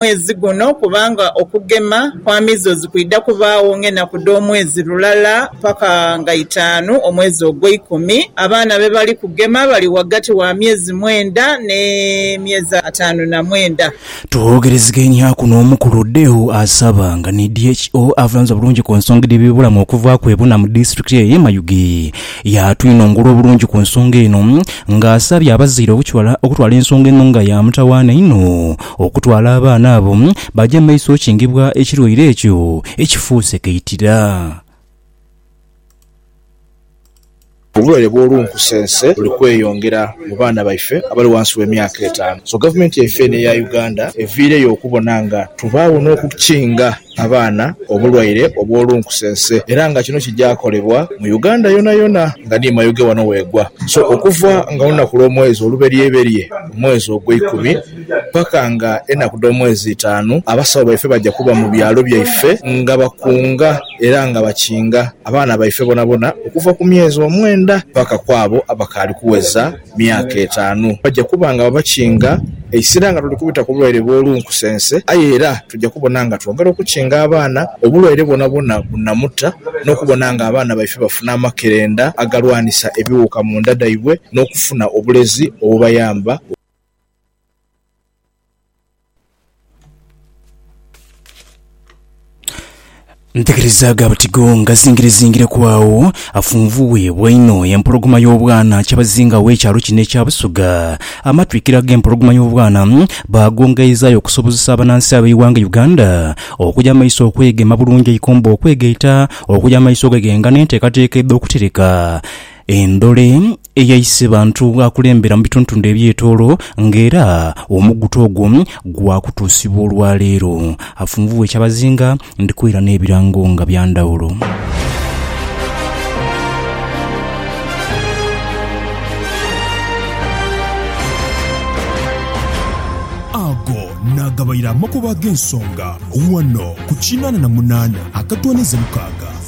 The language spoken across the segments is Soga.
mwezi guno kubanga okugema kwa measles kwidha kubaagho ng'enaku dh'omwezi lulala paka nga itaanu omwezi ogweikumi. Abaana be bali kugema bali ghagati wa myezi mwenda ne myezi ataanu na mwenda. Twogherezeganyaku n'omukulu Deo Asaba nga ni DHO avulanze obulungi ku nsonga edh'ebye bulamu okuvaaku ebuna mu disitulikiti eye Mayuge. Yatwinongora obulungi ku nsonga eno nga asabye abazaire okutwala ensonga eno nga ya mutawaana inho. Okutwala abaana abo baje mu maiso okingibwa ekirwaire ekyo ekifuuse kaitira. Obulwaire bw'olunkusense buli kweyongera mu baana baife abali ghansi w'emyaka etaanu. So gavumenti yaife eno eya Uganda eviireyo okubona nga tubaagho n'okukinga abaana obulwaire obw'olunkusense era nga kino kija kolebwa mu Uganda yonayona nga ni Mayuge wano wegwa so okuva nga olunaku lw'omwezi oluberyeberye omwezi ogweikumi paka nga enaku dh'omwezi itaanu abasawo baife baja kuba mu byalo byaife nga bakunga era nga bakinga abaana baife bonabona okuva ku myezi omwenda paka kwabo abakaali kuweza myaka etaanu. Baja kuba nga babakinga eisira nga tuli kubita ku bulwaire bwo lunkusense, aye era tuja kubona nga twongera okukinga abaana obulwaire bwonabwona bunamuta, n'okubona nga abaana baife bafuna amakerenda agalwanisa ebiwuuka mu nda dhaibwe, n'okufuna obulezi obubayamba. Ntegerezaagho abatigo nga zingirezingireku agho afunvuibwa inho empologoma y'obwana kyabazinga w'ekyalo kino ekya Busoga. Amatwikiro ag'empologoma y'obwana mm, baagongaizaayo okusobozesa abanansi ab'eighanga Uganda okuja mu maiso okwegema bulungi eikomba okwegaita, okuja mu maiso okweghenga n'enteekateeka edh'okutereka Endhole eyaise bantu akulembera mu bituntundu eby'etoolo nga era omugutu ogwo gwakutuusibwa olwaleero. Afunvubwa ekyabazinga ndiko era n'ebirango nga bya ndhawulo. Ago naagabaire amakubo ag'ensonga ghano ku kinaana na munaana akatwaniize mukaaga.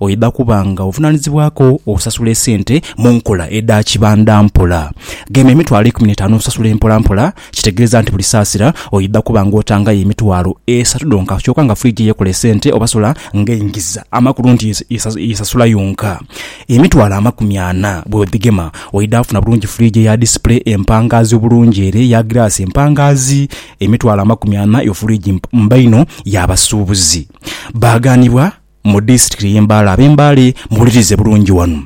Oidha kuba nga ovunaanizibwaku okusasula esente mu nkola edha kibanda mpola. Gema emitwalo eikumi n'etaanu osasule mpola mpola. Kitegeeza nti buli saasira oidha kuba nga otangayo emitwalo esatu dhonka kyoka nga fridge yekola esente oba solar ng'eingiza. Amakulu nti yesasula yonka. Emitwalo amakumi ana bwodhigema oidha kufuna bulungi fridge eya display empangaazi obulungi ere eya giraasi empangaazi. Emitwalo amakumi ana yo fridge mba inho y'abasuubuzi. Baagaanibwa Mu disitirikiti y'e Mbale. Ab'eMbale muwulirize bulungi wano.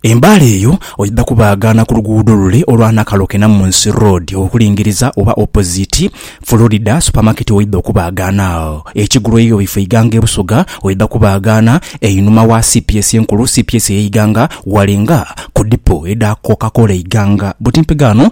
E Mbale eyo oidha kubaagaana ku luguudo lule olwa Nakaloke Namunsi Road okulingiriza oba opoziti Florida Supamaketi oidha okubaagaana agho. Ekigulu eiyo bweifa Iganga e Busoga oidha kubaagaana einhuma wa cps enkulu, cps ey'Iganga, ghale nga ku dipo edha Coca Cola Iganga. Butimpe ghano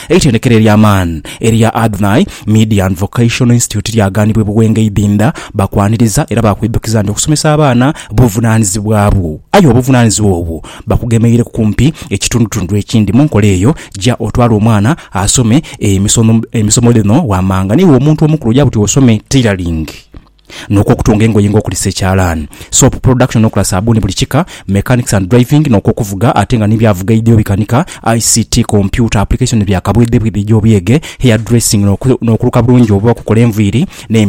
Eitendekero ery'amaani erya Adonai Midian Vocational Institute lyagaanibwa e Buwenge Idinda. Bakwaniriza era baakwidhukiza nti okusomesa abaana buvunaanizibwa bwo. Aye obuvunaanizibwa obwo bakugemeireku kumpi ekitundutundu ekindi. Mu nkola eyo, ja otwale omwana asome emisomo dhino wammanga niiwe omuntu omukulu oja buti osome tailoring. n'okwo okutunga engoye nga okulisa ekyalaani, soap production n'okola saabbuuni buli kika, mechanics and driving n'okwo okuvuga ate nga ni bya vuga ideo bikanika, ICT, kompyuta, application bya kabwedhebwedhe egy'obuyege, hair dressing n'okuluka bulungi oba okukola enviiri, n'emisono.